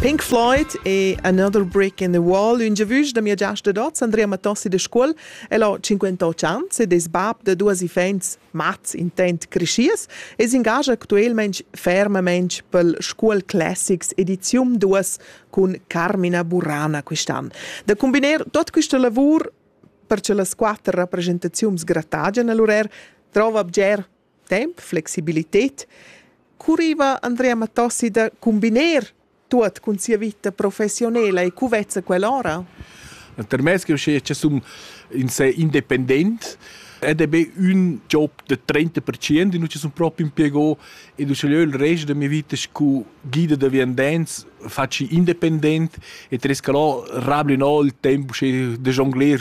Pink Floyd e Another Brick in the Wall, un giavüsch da mia giasta d'hoz Andrea Matossi de Scuol, el ho 58 ans ed es bab da duos iffaints mats intent creschiers e s'ingagia actuelmaing fermamaing pel Scuol Classics edizium 2 cun Carmina Burana quist'an. Da combiner tot quista lavur per che las quatter rappresentaziuns gratagian a l'urer, trova bger temp, flexibilität, curriva Andrea Matossi da combiner tuot cun sia vita professionela e cu vezza quell'ora? Termes che che sum in se independent ed è be un job de 30% e non ci sono proprio impiego e du ce il resto della mia vita cu guida de viandenz facci independent e tresca là rabli no il tempo che de jongler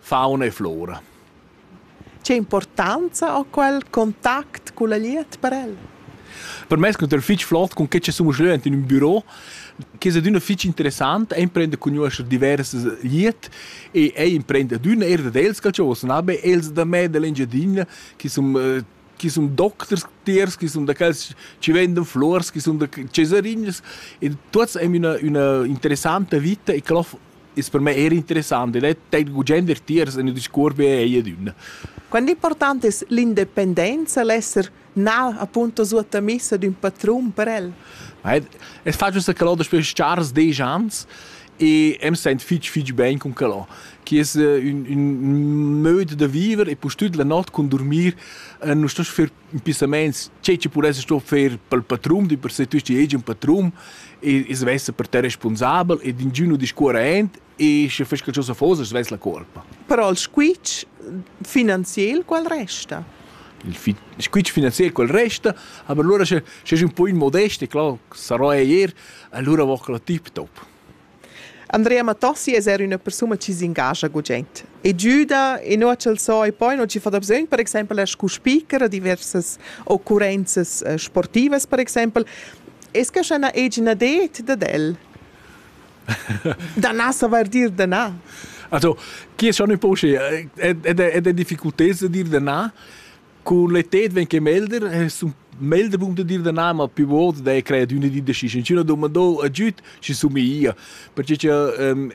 Fauna e flora. Che importanza ha quel contact culla glieud per el? Per me es cunter fich flot cun che che sun jeu ent in ün büro, che es adüna fich interessant, ei imprender cun nuoscher diversas glieud e ei imprender adüna, er dad els, quel cha vuol sunar be, els da me, da l'Engiadina, chi sun chi sun docters tiers, chi sun da quels chi vendan fluors, chi sun da cesarinas e tuots aim üna üna interessanta vita e quella es per me eir interessant ed el ten gugent er tiers in ün discuors be ej ed ün. Quant important es l'independenza, l'esser na appunto suottamissa d'ün patrun per el? Es facile che l'ho daspö chars desch ans e em sent fitg fitg bein cun quel che es eh, ün, ün möd da viver e pustüt la not cun dormir eh, nu sto fer impissamaints che ci pudesse sto fer pel patrum di per se tu sti egi un patrum e e svesse per te responsabel e d'ingino discuorent e sche fes qualcosa fosa svess la colpa però il squitsch finanziel qual resta il fit squitsch finanziel quel resta aber allora sche sche un po in modest e klar sarò er Allura vo quella tip-top. Andrea Mattossi es eir üna persuna chi s'ingascha gugent e güda e no ch'el so e poi no chi fa dabsögn per exaimpel er scu speaker a diversas occurrenzas eh, sportivas per exaimpel. Es que scha na egina det dad el? Danà savair dir danà. Also, chi es schon in poche ed è difficultà da dir danà, Cun le tet ven che melder es un melder bun da dir da na, ma più volte dai cred üna di da schi, schi üna domandò a giüt, schi somiglia. Perche cha ehm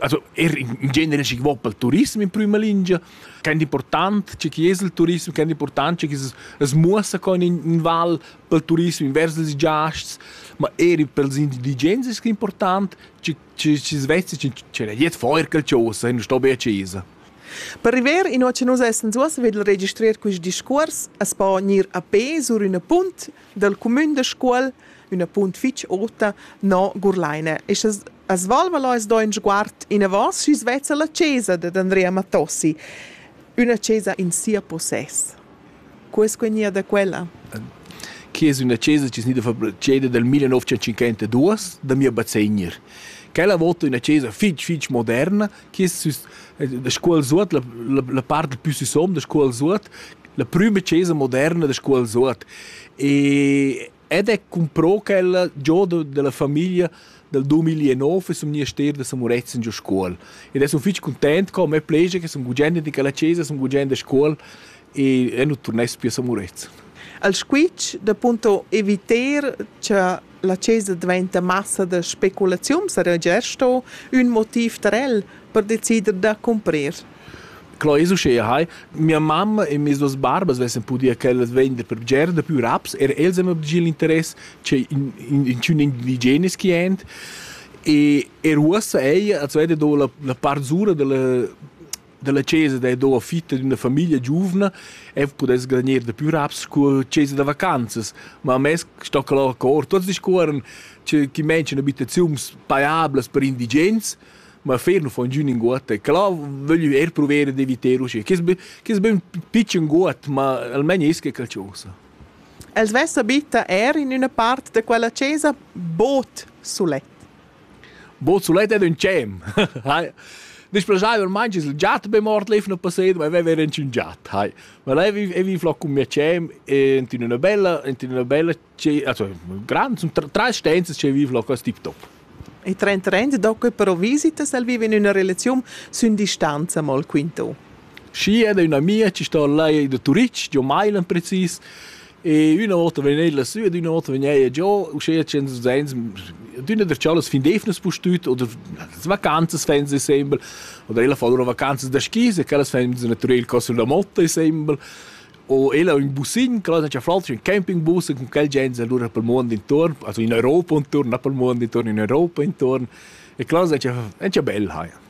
also er in genere chi vo pel turism in prüma lingia, quant important che chi es il turism, quant important che chi as muossa co in in val pel turism invers ils giasts, ma eir pels indigens es que important che che schi svezzi, che jet feuer qualchosa e nu sto be a chesa. Per river inua cha nus essans uossa vegl registrer quist discuors as po gnir a pè sur üna punt dal cumün da Scuol, üna punt fich ota, no Gurlaina. E scha as valva as do ün sguard inavant sü's vezza la chesa dad Andrea Mattossi, üna chesa in sia possess. Co es quegnia da quella? Que es üna chesa chi es gnida fabbriceda dal millenovecentocinquantaduos da mia bazegner. Quella vota üna chesa fich fich moderna da scuol suot la, la, la parte più sisom da scuol suot la prima chiesa moderna da scuol suot e ed è comprò quella giò de, della famiglia dal 2009 sul monastero de San Murezzan giù scuol ed è sono fitg content con me plegia che sono gugende di quella chiesa sono gugende a scuol e è non tornai più a San Murezzan al squitsch da punto eviter che La chesa dvainta massa da speculaziun, sarà già sto ün motiv per el per decider da cumprir. Clo es uschea hai, mia mamma e mes duos barbas vessan pudia quellas vender per bger da pü raps, er els han obdigi l'interess che in, in, in tschun indigenes chi ent e er uossa ella als veda do la, la part zura della dalla chesa da do fitta d'una famiglia giuvna e pudess garanir da più raps cu chesa da vacanzas ma mess sto que lur cor tots discuoran che chi mention abitaziuns paiablas per indigens ma fer nu fon giù in guot e clà voglio er provere di viter uschè che che ben pitschen guot ma almeno esca calciosa Els vessa bitta er in üna part da quella chesa bod sulet. Bod sulet ed ün tschem. Disch plaschaiver main chi's il giat be mort lef no passet, ma veva eir ün giat, hai. Ma leu ei vi flà cun mia tschem e ent in üna bella ent in üna bella also grand, sun trais stenzas chi vi flà cos tip top. E trend trend do que però visitas, el viva in üna relaziun sün distanza, mo'l quinto. Schi ed üna amia chi sto là da Turitg, giò Mailand precis, e üna vota vegn ella sü ed üna vota vegn eir giò, uschea tschient usins, d'üna der chalas fin d'eivnas pustüt oder las vacanzas fain insembel, oder ella fa lura vacanzas da skis e quellas fain natürel co sulla motta insembel, o ella ün bussin, quella haja flatsch ün campingbus e cun quel gens alura pel muond intuorn, also in Europa intuorn, na pel muond intuorn, in Europa intuorn, e quellas haja bel haja.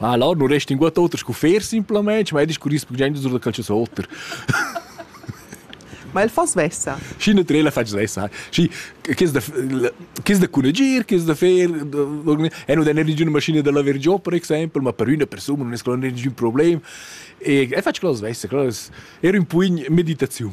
Ma là non resta inguott oter sco fer simplamaing, ma ed es corrispondiaint sur da calcius oter. Ma el fa svessa. Schi ne trela fa svessa. Schi chi's da chi's da cunegir, chi's da fer e non dà ninguna maschina da laver giò per exaimpel, ma per üna persuna non es quello ningün problem. E e faccio quello svessa, quello es era un po in meditaziun.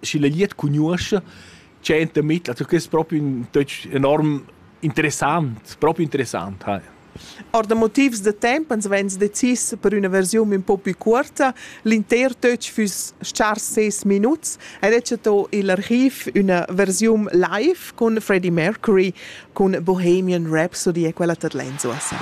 schi la glieud cugnuoscha, tschenta mit, also que es propi ün töch enorm interessant, propi interessant ha. Or da motivs da temp ans vegns decis per üna versiun ün po pü cuorta. L'inter töch füss chars ses minuts ed he chatto i'l archiv üna versiun live cun Freddie Mercury cun Bohemian Rhapsody e quella tad lenzuossa.